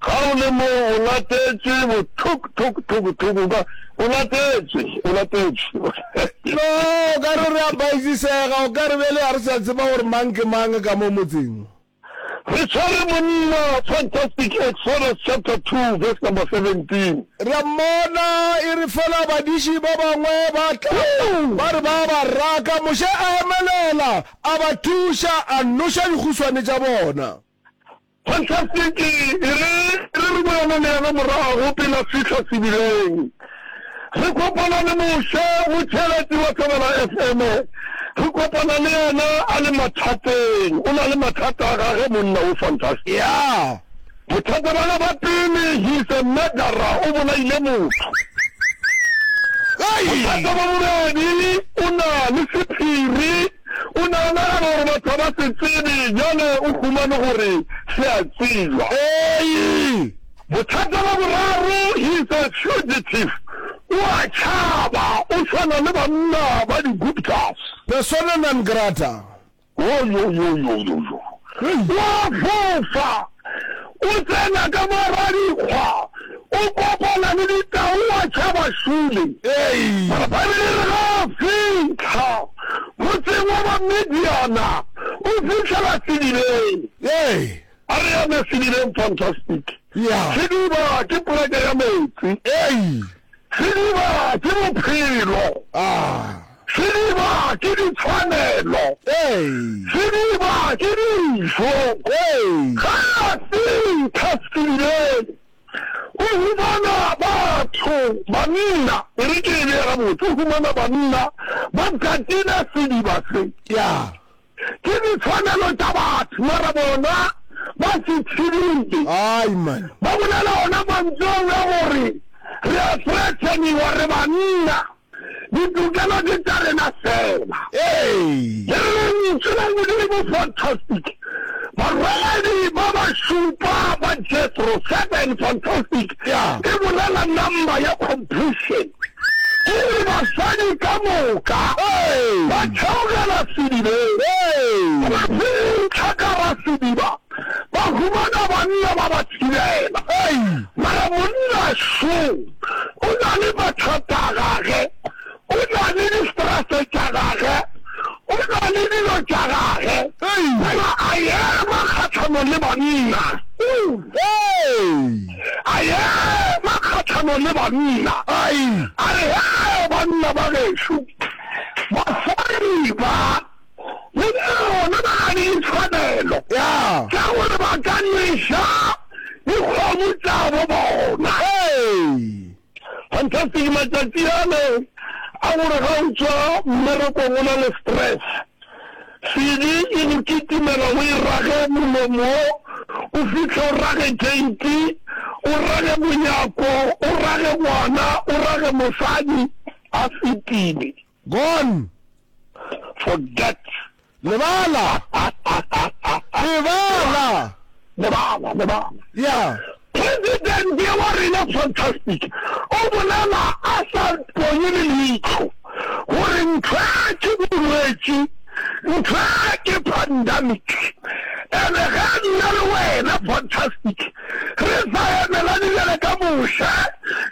Ga o le mo, o latetšwe bothok, thok, thok, thok, o ka, o latetšwe, o latetšwe. No, o ka re re a baizisega, o ka re bjale ga re sa tseba gore mang ke mang ka mo motseng. Re tshwere monna, Fantastic Exodus chapter two verse number seventeen. Re a mmona, e re fela badiši ba bangwe ba tla, ba re ba a ba raka, Moshe a emelela, a ba thuša, a noša dikguswane tša bona. Phasasiki e re re re boela le yena morago pele a fihla sebileng. Re kopana le Moshe Motšhelati wa Thobela FM. Re kopana le yena a le mathateng. O na le mathata a gage monna wo Fantastic. Ya, bothata ba ge ba pele, he is a murderer, o bolaile motho. Bothata ba bobedi, o na le sephiri. O ne a nagana gore batho ga ba se tsebe, bjale o humane gore se a tsebjwa. Ii, Bothata bja boraro, he is a fugitive, o a tšhaba, o swana le banna ba di-Guptas. Persona non grata. Wo, yo, yo, yo, yo, yo, Hei! O a fofa! O tsena ka mo ra dikgwa, o kopana le ditau wa tšhaba šule. Papa re re ga a fitlha motseng wa Bamidiana, o fitlhela sedibeng. A re eme sedibeng, fantastic. Sediba ke poleke ya metsi. Sediba ke bophelo. Sediba ke ditshwanelo. Sediba ke dijo. Ge a fihla sedibeng, o humana batho, banna, e re ke e bee gabotse, o humana banna ba katile sediba se. Ke ditshwanelo tša batho, mara bona ba se thibile. Ba bolela ona mantšu ao a gore re a threateniwa, re banna. Ditokelo ke tša rena fela. Ee. Lentšu la Modimo Fantastic Barwedi ba ba Šupa ba Jethro 7 Fantastic e bolela number ya completion ke re basadi ka moka ba theogela sedibeng, ba fintšha ka ga sediba. Ba humana banna ba ba tshelela. Mara monna šo o na le mathata a gage, o na le di-stress tša gage, o na le dilo tša gage, mara a ema kgahlanong le banna. A ema kgahlanong le banna, a re, Hee, banna ba gešu, basadi ba! go bona ba na le ditshwanelo tša gore ba ka nweša dikgomo tša bo bona. Fantastic matšatši ale a gore ga o tšwa mmerekong o na le stress, sedi e go kitimela o e rage molomo o fihle o rage keiti, o rage monyako, o rage ngwana, o rage mosadi a fetile. Gone! Forget! Lebala! Lebala! Lebala, lebala. Yeah. President wa rena fantastic o bolela a sa ponye le leitho gore ntho ke bolwetši, ntho ke pandemic. Ene ge nna le wena fantastic Re sa emelane bjale ka Moshe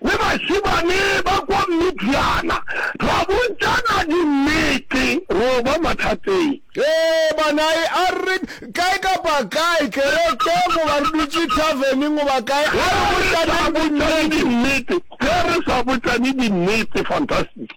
le bašemane ba kwa Midiana, ra bontšana dinnete, ro ba mathateng. Ge bana e a re, Kae kapa kae, kerekeng goba re dutše thaveneng goba kae, a re botšaneng dinnete. Ge re sa botšane dinnete, fantastic.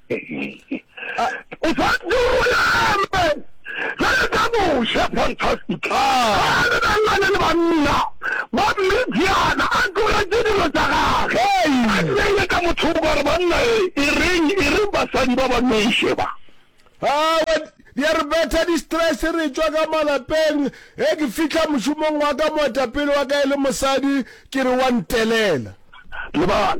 O swanetše o bolela amen bjale ka moše. Fantastic. Ga a lebelelane le banna ba Midiana, a tlogetše dilo tša gagwe, a nneile ka mothoko a re, Banna, e, e reng, e reng basadi ba ba noše ba? Aowa, di a re betha di-stress re tšwa ka malapeng. Ge ke fihla mošomong wa ka, moetapele wa ka e le mosadi, ke re wa ntelela. Lebala.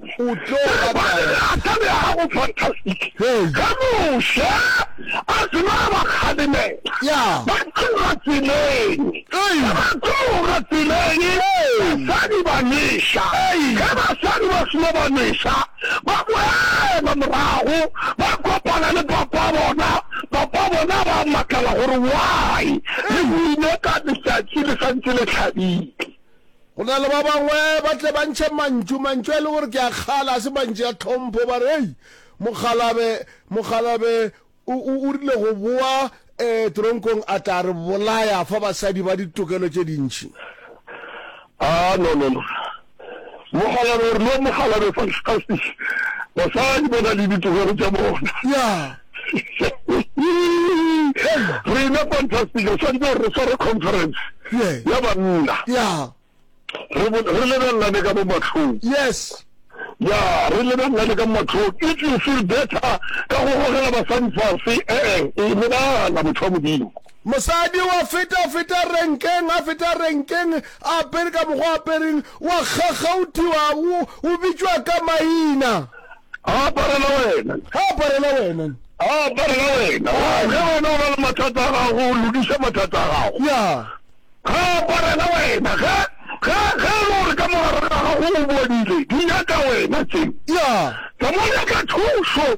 Go tlo ba kae? A ka be a go fantastic ka moše a se na ba kgalemela ba tloga tseleng ge ba tloga tseleng basadi ba nweša ge basadi ba seno ba nweša ba boela morago ba kopana le papa bona papa bona ba makala gore why le buile ka letšatši le santse le hlabile Go na le ba bangwe ba tle ba ntšhe mantšu, mantšu a e le gore ke a kgale, a se mantšu a tlhompho, ba re, Hei, mokgalabe, mokgalabe o, o, o rile go boa um teronkong a tla re bolaya, a fa basadi ba ditokelo tše dintši. Ah, no, no, no. Mokgalabe o rile, Mokgalabe, fantastisch. Basadi ba na le ditokelo tša bona. Ya. rena fantastic re santse re sware conference ya banna re lebelelane ka mo matlhong yes ya re lebelelane ka matlhong if you feel better ka go gogela basadi fase ee e lebala motho wa modimo mosadi wa feta feta renkeng a feta renkeng a apere ka mokgwa apereng wa kgakgauthiwa o bitšwa ka maina a aparela wena, a aparela wena, a aparela wena, ge wena o na le mathata a gago o lokiša mathata a gago, ya ga a aparela wena, ge ge ge e le gore ka mogare ga gago o bodile di nyaka wena tseo, ya tsa mo nyaka thušo.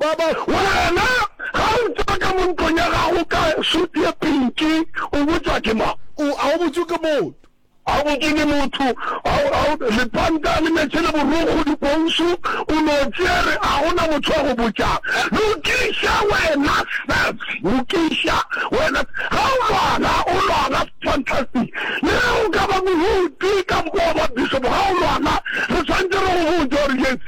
Ba ba, Wena, ga o tšwa ka mo ntlong ya gago ka suit ye pinki, o botšwa ke mang? O, a o botšwe ke motho. A o botšwe ke motho. A o, a o, lepanta le meetse le borokgo, dikousu, o no tšere, a go na motho wa go botšang. Lokiša wena, Seth, lokiša wena. Ga o lwana, o lwana, fantastic. Le ge o ka ba mohuti ka moka wa ba bishop, ga o lwana, re swanetše re go botše gore, yes.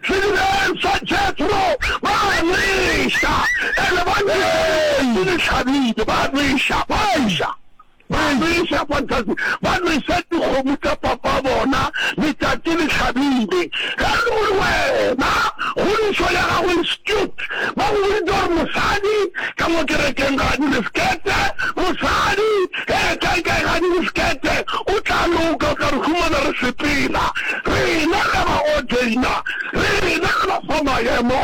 Sedibeng sa Jethro, ba a nweša, and ba nwešeditše ke dihlabile, ba a nweša, ba a nweša, ba a nweša, fantastic, ba nwešet dikgomo tša papa bona, letšatši le hlabile, ge e le gore wena kgodišo ya gago e skewed, ba go boditše gore mosadi ka mo kerekeng ga a dire skete, mosadi Hee, kae kae ga di re skete, o tla loka, o tla re humana re sepela. Rena re a ba ordaina, rena re ba fa maemo,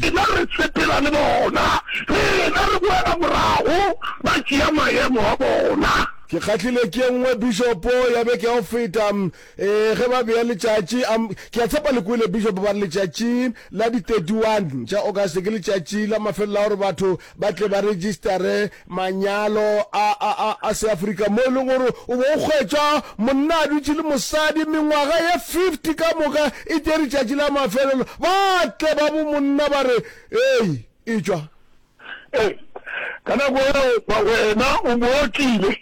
rena re sepela le bona, rena re boela morago ba tšea maemo a bona. Ke kgahlilwe ke e nngwe, Bishopo, ya beke ya go feta, ee, ge ba bea letšatši, a, ke a tshepa le kwele, Bishopo, ba re letšatši la di 31 tša August ke letšatši la mafelelo la gore batho ba tle ba registare manyalo a, a, a, a seafrika mo e leng gore o bo o kgwetšwa monna a dutše le mosadi mengwaga ye 50 ka moka e te retšatši la mafelelo ba tle ba bo monna ba re ei e tšwa Ee, ka nako eo wena o bo o tlile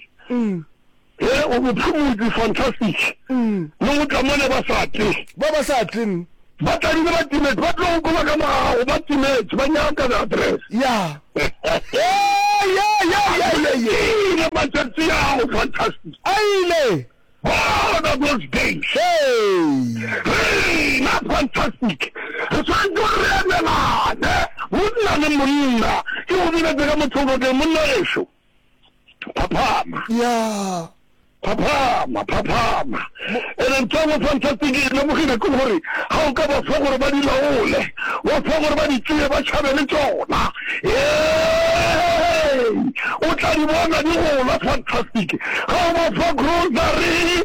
He, o mo phumutše, fantastic. Le go tla mone ba sa tle. Ba ba sa tle, mm. Ba tladile ba timetše, ba tlo go koba ka mo ga gago, ba timetše, ba nyaka the address. Ya. He, ye, ye, ye, ye, ye. Ile matšatši a go fantastic. A ile. Bona those days. Hey. Rena fantastic. Re swanetše re emelane, monna le monna. Ke go biletse ka motho o boteng, monna ešo. phaphama ya phaphama phaphama ene ntho engwe fantastic e lemogile ke gore ga o ka ba fa gore ba di laole wa fa gore ba di tseye ba tšhabe le tsona o tla di bona di gola fantastic ga o ba fa grocery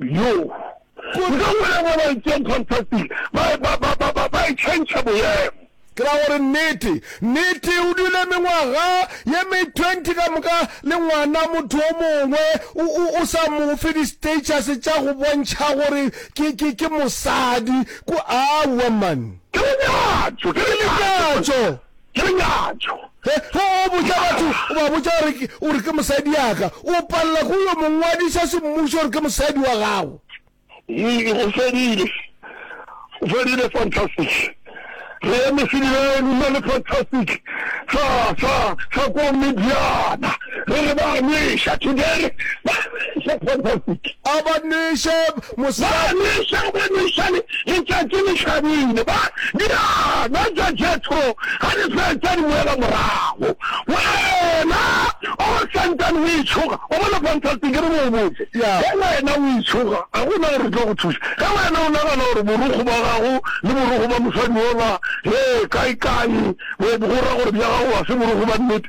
Yo, go tla bolela ba ba itšeng contracting ba, ba, ba, ba, ba, ba e tšhentšha boemo. Ke ra gore nnete, nnete, o dule mengwaga ye me twenty ka moka le ngwana motho o mongwe, o, o, o sa mo fe di-status tša go bontšha gore ke, ke, ke mosadi, ku, aowa man. Ke lenyatšo, ke lenyatšo. Ke nyatšo. Ge o botša batho, o ba botša gore ke, o re ke mosadi yaka, o palela go yo mongwadiša semmušo gore ke mosadi wa gago. Ii, o fedile. O fedile, fantastic. Re eme sedibeng, o na le fantastic sa, sa, sa ko Midiana. Re re ba a nweša. Today re ba a nweša for profit. A ba nweše mosegare. Ba a nweša, a ba nweša le letšatši le hlabile. Ba diana tša Jethro ga di fetša di boela morago. Wena o santsane o itšhoga, o bona fantastic ke re mo o botse. Ge wena o itšhoga ga go na gore re tlo go thuša. Ge wena o nagana gore borokgo bwa gago le borokgo bwa mosadi yola, hee, kae-kae, bo ra gore bja gago ga se borokgo bwa nnete,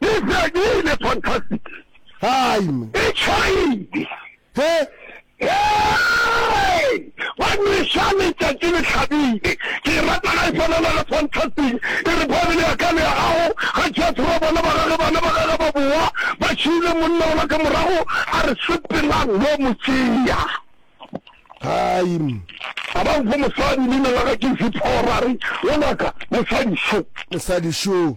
Ke fedile fantastic. Hai me. E tšhaile. He. Hey! Ba nweša letšatši le hlabile. Ke e rata ga e swanana le fantastic. E re Bible ya ka le ya gago, ga Jethro a bona ba gage bana ba gage ba bowa ba šiile monna ola ka morago, a re sepelang lo mo tšea. Hai me. A ba nfa mosadi leina la ga ke Ziphora, a re, Ngwanaka, mosadi šo. Mosadi šo.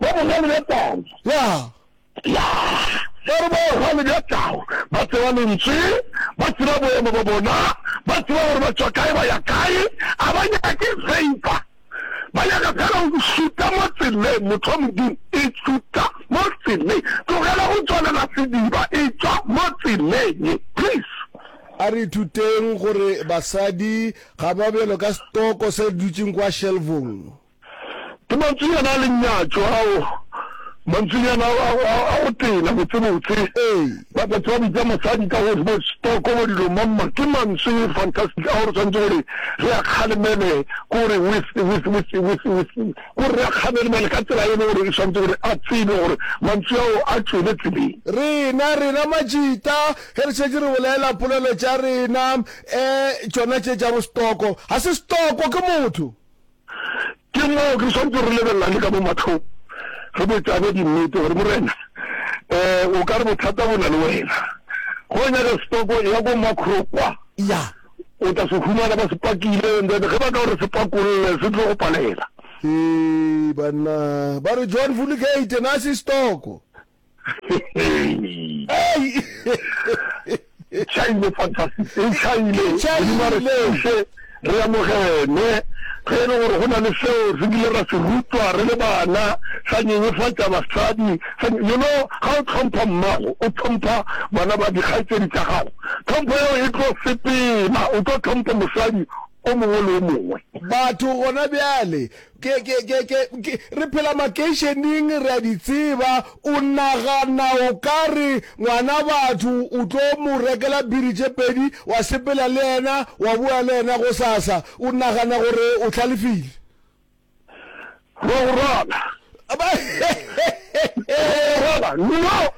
Ba bogale bja tau. Ya. Ya. Ba re ba bogale bja tau. Ba tseba Lentswe. Ba tseba boemo bja bona. Ba tseba gore ba tšwa kae, ba ya kae. A ba nyake favor. Ba nyaka fela go šuta mo tseleng, motho wa Modimo. E šuta mo tseleng. Tlogela go tswalela sediba. E tšwa mo tseleng. Please. A re ithuteng gore basadi ga ba bjalo ka setoko se dutšeng kwa šelfong. Ke mantswenyana a lenyatšo ao, mantswenyana a go tena botsebotse. Ba ka tswa bitsa mosadi ka go bo stoko bo dilo mamma. Ke mantswe fantastic ao re tshwanetse gore re a kgalemele gore with with with with with gore re a kgalemele ka tsela e le gore e tshwanetse gore a tsebe gore mantswe ao a tšwele tseleng. Rena rena majita ge re šetše re bolela polelo tša rena, eh tšona tše tša bo stoko ga se stoko ke motho. Ke moo re swantse re lebelelane ka mo matlhong, re botšane dinnete gore, Morena, um o ka re bothata bo na le wena. Ge o nyaka sepako, eya ko Makro kwa. Eya. O tla se humana ba se pakile, and then ge ba ka o re se pakolle, se tlo go palela. Hee, banna! Ba re Joan Vulligate na se stoko. Chaile fantastic e chaile modimo re thuse re amogene ge e le gore go na le seo re bile ra se rutwa re le bana sa nyenyefatša basadi you know ga o tlhompha mmago o tlhompha bana ba dikgaitsedi tša gago tlhompho yeo e tlo sepela o tlo tlhompha mosadi o mongwe le o mongwe batho gona bjale Ke, ke, ke, ke, ke, re phela makeišeneng, re a di tseba. O nagana o ka re ngwana batho o tlo mo rekela biri tše pedi, wa sepela le yena, wa boya le yena gosasa? O nagana gore o hlalefile? Rogorwana! Eehela! No,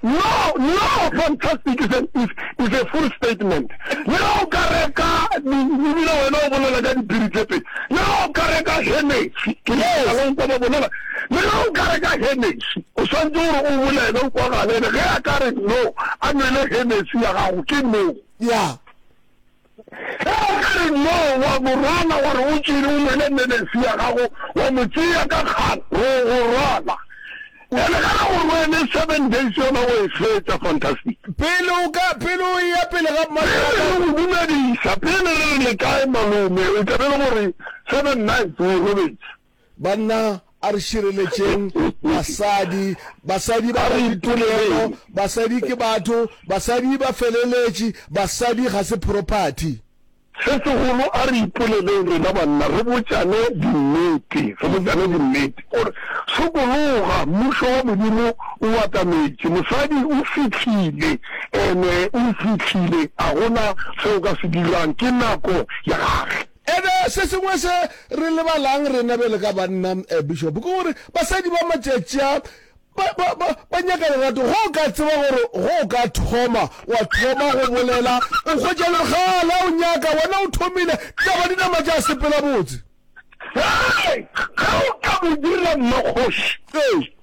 no, no! Fantastic is a, is, is a full statement. Le ge o ka reka di, ebile wena o bolela ka dipiri tše pedi. Le ge o ka reka Hennessy, ke Yes. leka go kwa ba bolela. Le ge o ka reka Hennessy, o swantše gore o bolele, o kwagalele. Ge a ka re no, a nwele Hennessy ya gago, ke no. Ya. Ge a ka re, No, wa go rwala, wa re o tšere o nwele melesi ya gago, wa mo tšea ka kgang, re o go rwala. Bjale ge a go rwele, seven days yona o e fetša. Fantastic. Pele o ka, pele o eya pele ga mma Pele re Tlala. go dumedisa, pele re re le kae malome, e tla be e le gore seven nights o e robetše. Banna, a re šireletšeng basadi. Basadi ba na ditumelo. Basadi ke batho. Basadi ba feleletše. Basadi ga se property. Se segolo, a re ipoleleng rena banna, re botšane dinnete, re botšane dinnete gore, Sokologa, Mmušo wa Modimo o atametše. Mosadi o fihlile. Ene o fihlile. A go na se o ka se dirang. Ke nako ya gage. And se sengwe se re lebalang rena bjale ka banna, Bishop, ke gore basadi ba matšatši a ba, ba, ba, ba nyaka lerato. Ge o ka tseba gore ge o ka thoma wa thoma go bolela, o hwetša le kgale a o nyaka, wena o thomile, ditaba di nama tša sepela botse. Hei! Ge o ka mo dira mmakgoši. Ee.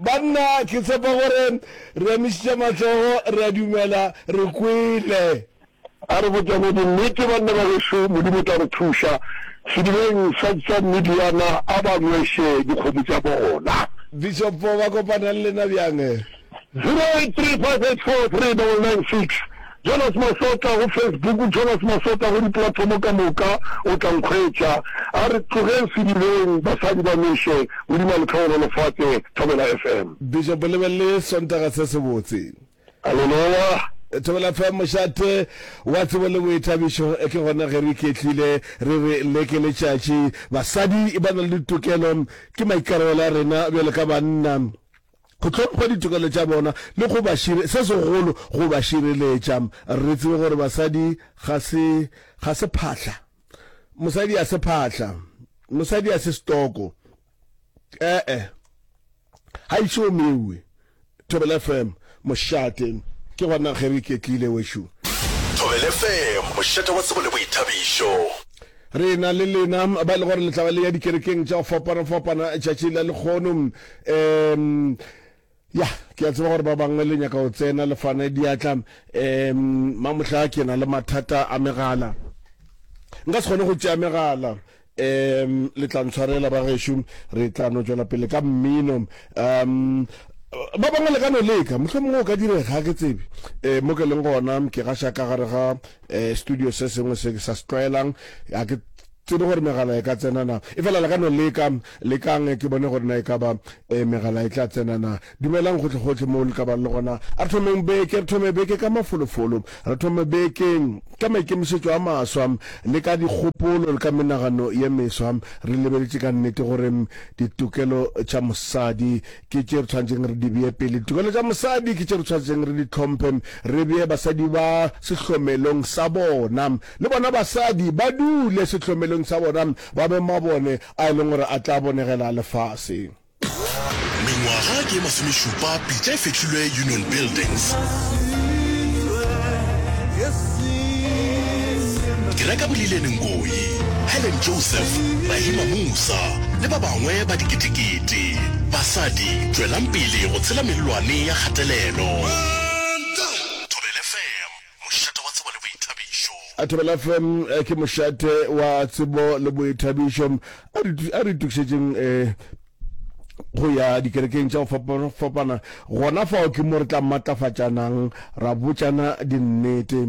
banna ke tshepa gore re emišitše matsogo re a dumela re kwele a re botšane dinnete banna ba geso modimo tla re thuša sedibeng sa tsa mediana a ba nweše dikgomo tša bona bishop ba kopanang lena bjang 0835843996 Jonas Masotla go Facebook Jonas Masotla go diplathomo ka moka o tla nkhwetša A re tlogeng sedibeng basadi ba nweše Modimo a le tlhokomele lefatše Thobela FM. Bishop lebelele sontaga se se botse. Aleloya. Thobela FM mošate wa tsebo le boithabišo ke gona ge re iketlile re re le ke letšatši. Basadi ba na le ditokelo, ke maikarabelo a rena bjalo ka banna. go hlompha ditokelo tša bona le go ba šire, se segolo go ba šireletša. Re tsebe gore basadi ga se, ga se phahla. Mosadi a se phahla. Mosadi a se stoko. E-e. Ga e šomewe. Thobela FM, mošate. Ke gona ge re iketlile, wešo. Thobela FM, mošate wa tsebo le boithabišo. Re na le lena ba e le gore le tla ba le ya dikerekeng tša go fapana-fapana tšatši la lekgono. um ya ke a tseba gore ba bangwe le nyaka go tsena le fana diatla um mamohla ke na le mathata a megala nka se kgone go tšea megala um le tla ntshwarela ba gešo re tla no tšwela pele ka mmino um ba bangwe le ka no leka motlho mongwe o ka direga ke tsebe um mo ke leng gona ke gaša ka gare ga um studio se sengwe se ke sa se tlwaelang a ke Tsebe gore megala e ka tsena na. Efela le ka no leka. Lekang ke bone gore na e ka ba megala e tla tsena na. Dumelang gohlegohle moo le ka bang le gona. A re thomeng beke, re thome beke ka mafolofolo. Re thome beke ka maikemišetšo a maswa, le ka dikgopolo, le ka menagano ye meswa, re lebeletše ka nnete gore ditokelo tša mosadi ke tše re tshwanetseng re di bee pele. Ditokelo tša mosadi ke tše re tshwanetseng re di hlomphe, re bee basadi ba sehlomelong sa bona. Le bona basadi ba dule sehlomelong sa bona, ba be mabone a e leng gore a tla bonegela lefase. Mengwaga ke ye masomešupa pitša e fehlilwe Union Buildings. Kereka Bolileni Nkoyi, Helen Joseph, Rahima Musa le ba bangwe ba diketekete. Tee. Basadi, tšwelang pele go tshela mellwane ya kgatelelo. Thobela FM, mošate wa tsebo le boithabišo. Thobela FM ke mošate wa tsebo le boithabišo. A re, a re itokišetšeng go ya dikerekeng tša go fapafapana. Gona fao ke mo re tla matlafatšanang, ra botšana dinnete.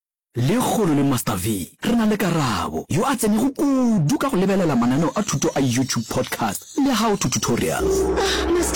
Lekgolo le Master V, re na le Karabo, yo a tsenego kudu ka go lebelela mananeo a thuto a YouTube podcast le How to Tutorials. Ah, Master!